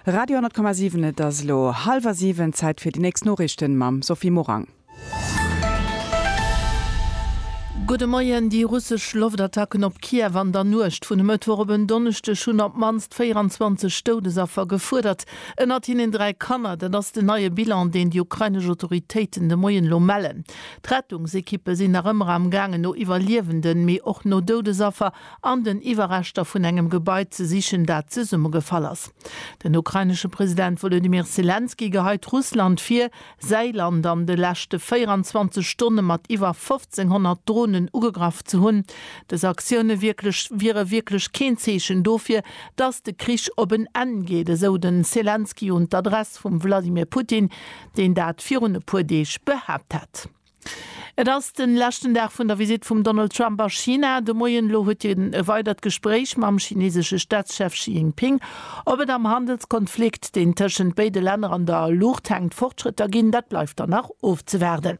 Radio 10,7 Et ass elo hallwer siwen, Zäit fir déi nächst Noriichten mam Sophie Morang. Gudde Moien, Déi russesch Loftattacken op Kiew an der Nuecht vun e Mëttwoch op en Donneschdeg hunn op d'mannst 24 Doudesaffer gefuerdert, ënnert hinnen dräi Kanner. Dat ass den neie Bilan, deen déi ukrainesch Autoritéiten de Moien elo mellen. D'Rettungsekippe sinn nach ëmmer am gaangen no Iwwerliewenden, mee och no Doudesaffer. an den Iwwerreschter vun engem Gebai ze sichen, dat zesummegefall ass. Den ukrainesche President Wolodymyr Selenskyj geheit Russland vir, säi Land an de leschte 24 Stonne mat iwwer 1.500 Dronen ugegraff ze hunn. Dës Aktioune wiere wierklech keen Zeechen dofir, datt de Krich op en Enn geet, esou de Selenskyj un d'Adress vum Wladimir Putin, deen dat virun e puer Deeg behaapt hat. Et ass de leschten Dag vun der Visitt vum Donald Trump a China. De Moien elo huet hien e weidert Gespréich mam chinesesche Staatschef Xi Jinping. Ob et am Handelskonflikt, deen tëschent béide Länner an der Luucht hänkt, Fortschrëtter ginn, dat bleift dann nach ofzewaarden.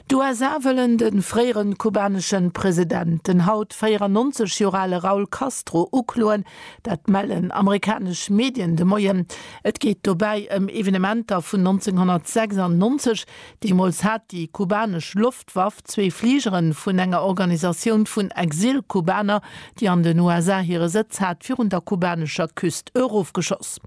D'USA wëllen de fréiere kubanesche President, den haut 94 Joer ale Raul Castro, ukloen. Dat mellen amerikanesch Medien de Moien. Et geet dobäi ëm Evenementer vun 1996, Deemools hat déi kubanesch Loftwaff zwee Fligere vun enger Organisatioun vun Exil-Kubaner, déi an den USA hire Sëtz hat, virun der kubanescher Küst erofgeschoss.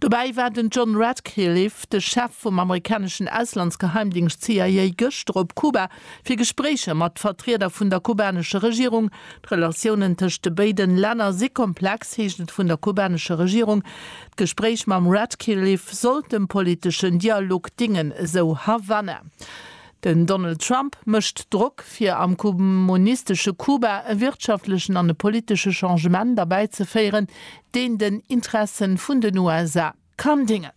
Dobäi war den John Ratcliffe, de Chef vum amerikaneschen Auslandsgeheimdingscht CIA, gëschter op Kuba, fir Gespréicher mat Vertrieder vun der kubanescher Regierung. D'Relatiounen tëscht de béiden Länner si komplex, heescht et vun der kubanescher Regierung. D'Gespréich mam Ratcliffe sollt dem politeschen Dialog dingen, esou Havanna. Den Donald Trump mécht Drock, fir am kommunistesche Kuba e wirtschaftlechen an e politesche Changement erbäizeféieren, deen den Interessen vun den USA kann dingen.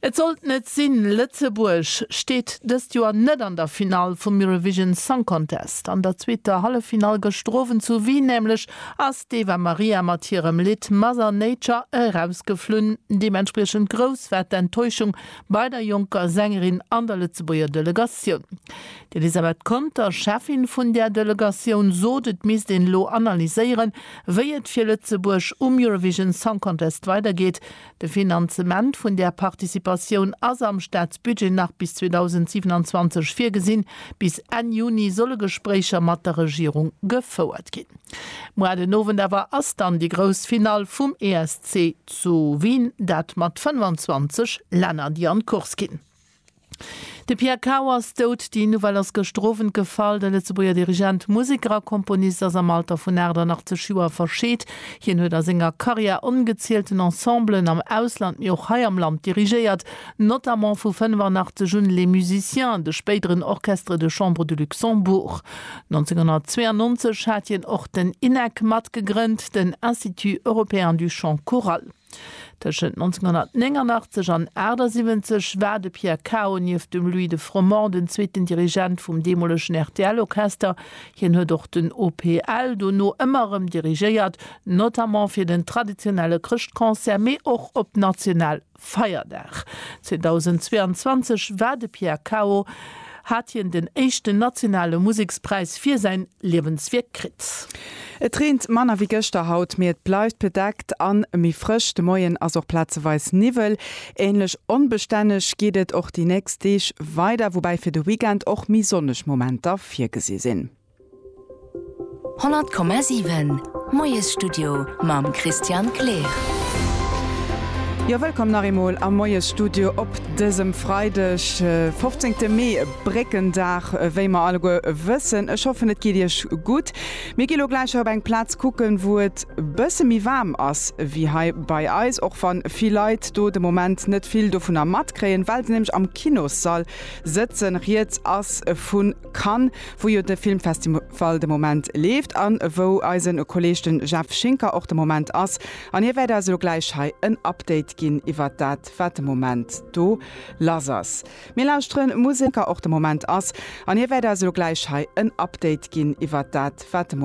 Et sollt net sinn, Lëtzebuerg steet dëst Joer net an der Finall vum Eurovision Song Contest. An der zweeter Halleffinall gëschter Owend zu Wien nämlech ass d'Eva Maria mat hirem Lidd Mother Nature erausgeflunn. Deementspriechend grouss war d'Enttäuschung bei der jonker Sängerin an der Lëtzebuerger Delegatioun. D'Elisabeth Conter, Cheffin vun där Delegatioun, sot, et misst een elo analyséieren, wéi et fir Lëtzebuerg um Eurovision Song Contest weidergeet. De Finanzement vun där Participatioun ass am Staatsbudget nach bis 2027 virgesinn. Bis Enn Juni solle Gespréicher mat der Regierung gefouert ginn. Muar den Owend awer ass dann déi grouss Finall vum ESC zu Wien, dat mat 25 Länner, déi an d'Course ginn. De Pierre Cao ass dout. Déi Nouvelle ass gëschter Owend gefall. De Lëtzebuerger Dirigent, Museker a Komponist ass am Alter vun 88 Joer verscheet. Hien huet a senger Karriär ongezielten Ensemblen am Ausland, mee och hei am Land dirigéiert, notamment vu 85 un Les Musiciens, de spéideren Orchestre de Chambre du Luxembourg. 1992 hat hien och den INEC matgegrënnt, den Institut Européen du Chant Choral. Tëschent 1989 an 78 war de Pierre Cao nieft dem Louis de Froment den zweeten Dirigent vum deemolegen RTL-Orchester. Hien huet och den OPL dono ëmmer erëm dirigéiert, notamment fir den traditionelle Chrëschtconcert, mee och op national Feierdag. 2022 war de Pierre Cao. hat hien den éischten nationale Musekspräis fir säin Liewenswierk kritt. Et reent manner wéi gëschter haut, mee et bleift bedeckt an méi frësch. De Moien ass och plazeweis Niwwel. Ähnlech onbestänneg geet et och déi nächst Deeg weider, woubäi fir de Weekend och méi sonneg Momenter virgesi sinn. 100,7 Moiesstudio mam Christian Kleer. Jo, wëllkomm nach eemol am Moiesstudio op dësem Freideg, 15 Mee, Bréckendag, wéi mer alleguer wëssen. Ech hoffen, et geet Iech gutt. Mir gi lo gläich op eng Plaz kucken, wou et e bësse méi waarm ass wéi hei bei eis, och wa vill Leit do de Moment net vill dovunner matkréien, well se nämlech am Kinossall sëtzen. Rieds ass vu Cannes, wou jo de Filmfestival de Moment leeft an wou eisen Kolleg den Jeff Schinker och de Moment ass an hie wäert eis elo gläich hei en Update ginn iwwert dat wat de Moment do lass ass. Mir lauschteren Musek. Schinker och de Moment ass an hie wäert eis elo gläich hei en Update ginn iwwert dat wat de Moment.